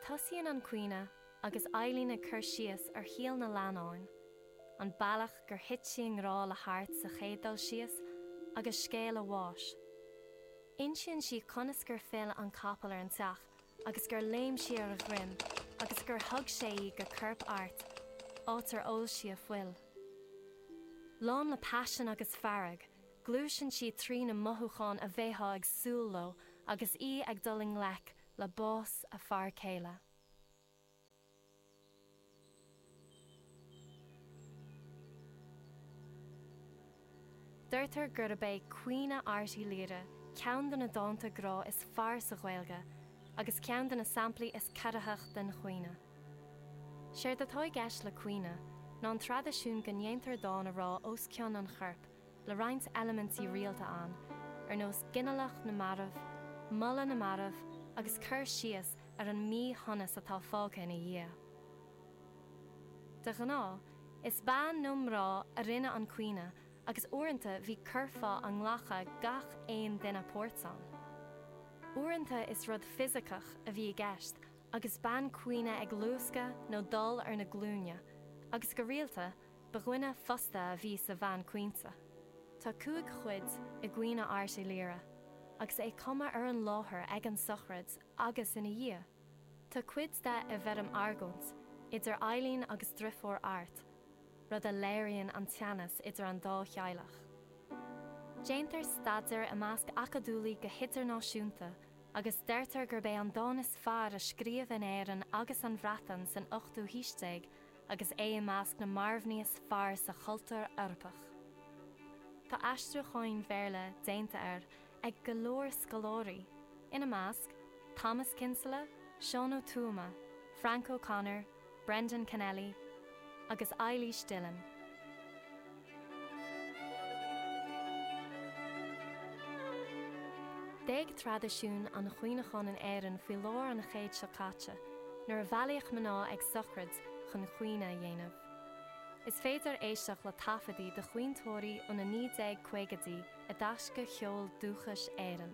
Tosaíonn an caoineadh agus Eileen ag cur síos ar shaol na leannáin, an bealach gur thit sí i ngrá le hArt sa chéad dul síos agus scéal a bháis. Insíonn sí conas gur phill an capall ar an teach agus gur léim sí ar a dhroim agus gur thug sé go corp Airt, áit ar ól sí a fuil. Lán le paisean agus fearg. Gluaiseann sí trí na mothúcháin a bheifeá ag súil leo agus í ag dul i ngleic le bás a fear céile. Deirtear gurb é 'Caoineadh Airt Uí Laoire' ceann de na dánta grá is fearr sa Ghaeilge agus ceann de na samplaí is corraitheach den chaoineadh. Séard atá i gceist le caoineadh ná an traidisiún go ndéantar dán a rá os cionn an choirp. le roinnt eilimintí rialta ann, ar nós ginealach na marbh, moladh na marbh agus cur síos ar an míshonas atá fágtha ina dhiaidh. De ghnáth, is bean nó mná a rinne an caoineadh agus uaireanta bhí curfá a nglacadh gach aon duine páirt ann. Uaireanta is rud fisiceach a bhí i gceist agus bean caoineadh ag luascadh nó dul ar na glúine agus go rialta, Ba dhuine fostaithe a bhí sa bhean caointe. Tá cúig chuid i gCaoineadh Airt Uí Laoire, agus é cumtha ar an láthair ag an sochraid agus ina dhiaidh. Tá cuid de i bhfoirm argóint idir Eileen agus driofúr Airt, rud a léiríonn an teannas idir an dá theaghlach. Déantar staidéar i measc acadúlaí go hidirnáisiúnta agus deirtear gurb é an dán is fearr a scríobh in Éirinn agus an Bhreatain san ochtú haois déag agus é i measc na marbhnaí is fearr sa chultúr Eorpach. Tá aistriúcháin Bhéarla déanta air ag go leor scoláirí, ina measc, Thomas Kinsella, Seán Ó Tuama, Frank O'Connor, Brendan Kennelly agus Eilís Dillon. D'éag traidisiún an chaoineacháin in Éirinn faoi lár an chéid seo caite, nuair a bhailíodh mná ag sochraid chun caoineadh a dhéanamh. Is féidir éisteacht le taifeadtaí de chaointeoirí ó na 1950idí i dTaisce Cheol Dúchais Éireann.